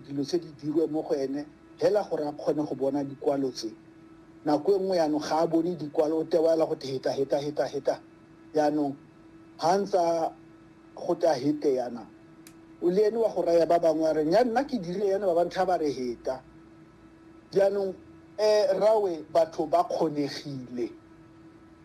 Dilo tse di dirwe mo go ene hela gore a kgone go bona dikwalo tse. Nako e nngwe yaanong ga a bone dikwalo, o tewa hela go te heta, heta, heta, heta. Yaanong ha a ntse a go te a hete yana, o le ene wa go raya ba bangwe a re, Nya, nna ke dirile yana, ba bangwe tha ba re heta. Jaanong, ee, rrawe, batho ba kgonegile.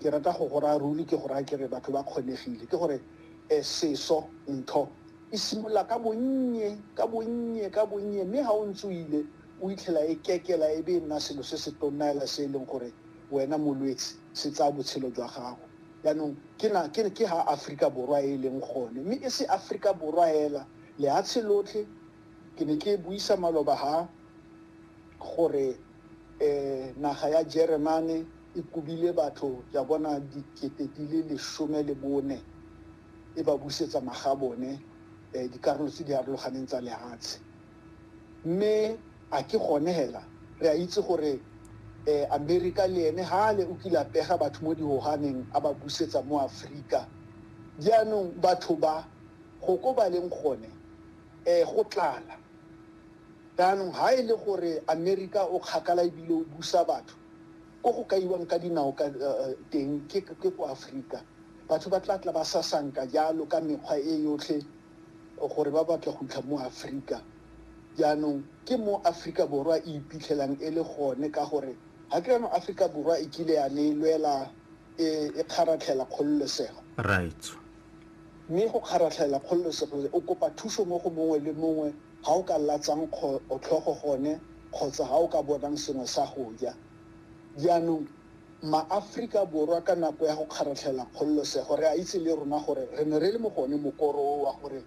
Ke rata go go raya ruri, ke go raya ke re batho ba kgonegile. Ke gore e seso, ntho, e simolola ka bonnye, ka bonnye, ka bonnye, mme ga o ntse o ile o itlhela e kekela e be e nna selo se se tonna hela se e leng gore wena molwetse se tsaya botshelo jwa gago. Jaanong ke na ke ke ha Aforika Borwa e e leng gone, mme e se Aforika Borwa hela, lehatshe lotlhe. Ke ne ke buisa maloba ha gore naga ya Jeremane, e kobile batho ya bona dikete di le lesome le bone e ba busetsa magabone um dikarolo tse di arologaneng tsa lehatshe mme a ke gone hela re a itse gore um amerika le ene hale o kile a pega batho mo dihoganeng a ba busetsa mo aforika jaanong batho ba go ko ba leng gone um go tlala jaanong ha e le gore amerika o kgakala ebile o busa batho Ko go kaiwang ka dinao ka teng ke ko Afrika. Batho ba tla tla ba sasanka jalo ka mekgwa e yotlhe gore ba batla go fitlha mo Afrika. Jaanong ke mo Afrika Borwa e iphitlhelang e le gone ka gore ga ke re jaanong Afrika Borwa e kile ya ne e lwela e kgaratlhela kgololesego. Right. Mme go kgaratlhela kgololesego o kopa thuso mo go mongwe le mongwe. ha o ka latsang tlhogo gone kgotsa ha o ka bonang sengwe sa go ja. Jaanong, maAforika Borwa ka nako ya go kgaratlhela kgololosego re a itse le rona gore re ne re le mo go one mokoro o wa gore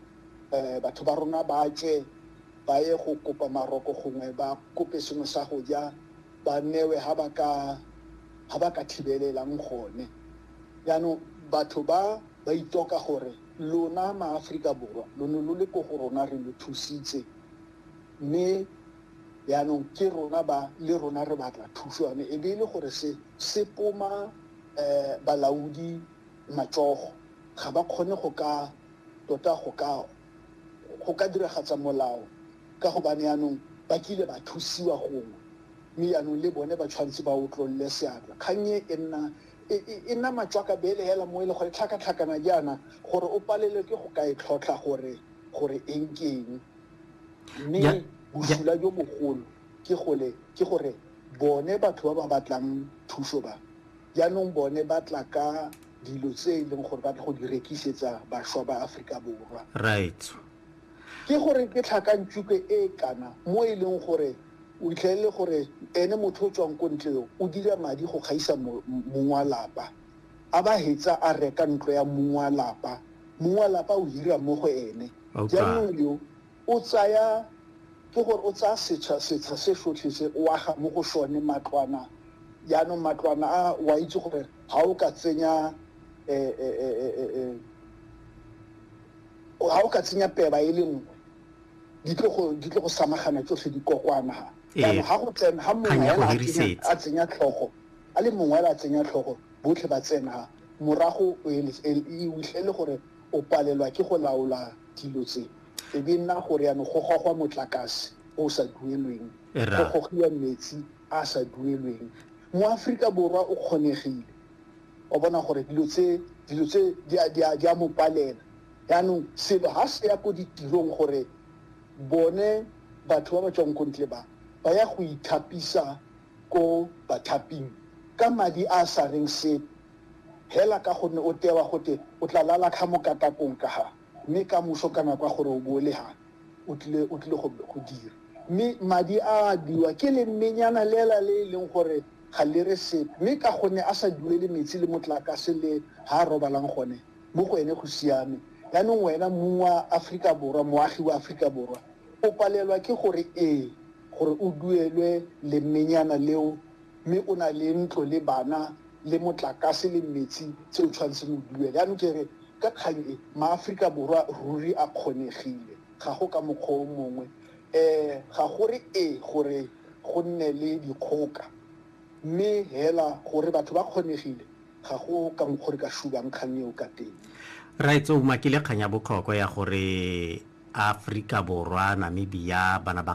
batho ba rona ba tswe ba ye go kopa maroko gongwe ba kope sengwe sa go ja ba newe ha ba ka ha ba ka thibelelang gone. Jaanong batho ba ba itoka gore lona maAforika Borwa lo ne lo le ko go rona re lo thusitse mme jaanong ke rona ba le rona re batla thuso yone e be e le gore se se poma um balaodi matsogo ga ba kgone go ka tota go ka go ka diragatsa molao ka gobane jaanong ba kile ba thusiwa gongwe mme jaanong le bone ba tshwanetse ba otlolole seatla kgang e e nna E, e, e nama tswaka bele hela mo e le gore tlhakatlhakana jaana gore o palelwe ke go ka e tlhotlha gore gore eng ke eng mme bosula jo bogolo ke gole ke gore bone batho ba ba batlang thuso ba jaanong bone ba tla ka dilo tse e leng gore ba tla go di rekisetsa bašwa ba aforika borwa right Ke gore ke tlhakantšupe e e kana mo e leng gore o itlhelele gore ene motho o tswang ko ntle yo o dira madi go gaisa mong wa lapa, a ba hetsa a reka ntlo ya mong wa lapa, mong wa lapa o hira mo go ene. Jaanong yo o tsaya, ke gore o tsaya setsha setsha se sotlhe se o aga mo go sone matlwana, jaanong matlwana a o a itse gore ga o ka tsenya . Ga o ka tsenya peba e le nngwe, di tlo go di tlo go samagana tsotlhe di kokwana ha. Ee. Jaanong ga go tsena ga mongwe Kgang ya go hela a tsenya- hirisetsa. a tsenya tlhogo a le mongwe hela a tsenya tlhogo botlhe ba tsena morago o ele- e e utlwe e le gore o palelwa ke go laola dilo tse e be nna gore yanong go gogwa motlakase o o sa duelweng Era. go gogiwa metsi a a sa duelweng mo aforika borwa o kgonegile Wa bona gore dilo tse, dilo tse di a, di a, di a mo palela. Yaanong selo ha se ya ko ditirong gore bone batho ba ba tswang ko ntle ba, ba ya go ithapisa ko bathaping ka madi a a sa reng sepe, hela ka gonne o tewa gote o tla lala kha mo katakong ka ha, mme ka moso ka nako ya gore o bo o le ha, o tlile, o tlile go, go dira. Mme madi a a biwa ke lemenyana lela le e leng gore ga le re sepe, mme ka gonne a sa duele metsi le motlakase le ha a robalang gone, mo go ene go siame. Jaanong wena mong wa Aforika Borwa, moagi wa Aforika Borwa, o palelwa ke go re ee gore o duelwe lemmenyana leo, mme o na le ntlo le bana le motlakase le metsi tse o tshwanetseng o duele. Jaanong ke re ka kgang e, maAforika Borwa ruri a kgonegile, ga go ka mokgwa o mongwe. Ee ga go re ee gore go nne le dikgoka, mme hela gore batho ba kgonegile, ga go ka mokgwa o re ka shubang kgang eo ka teng. Raetsho o umakile kgang ya botlhokwa ya gore Aforika Borwa, Namibia, ba na ba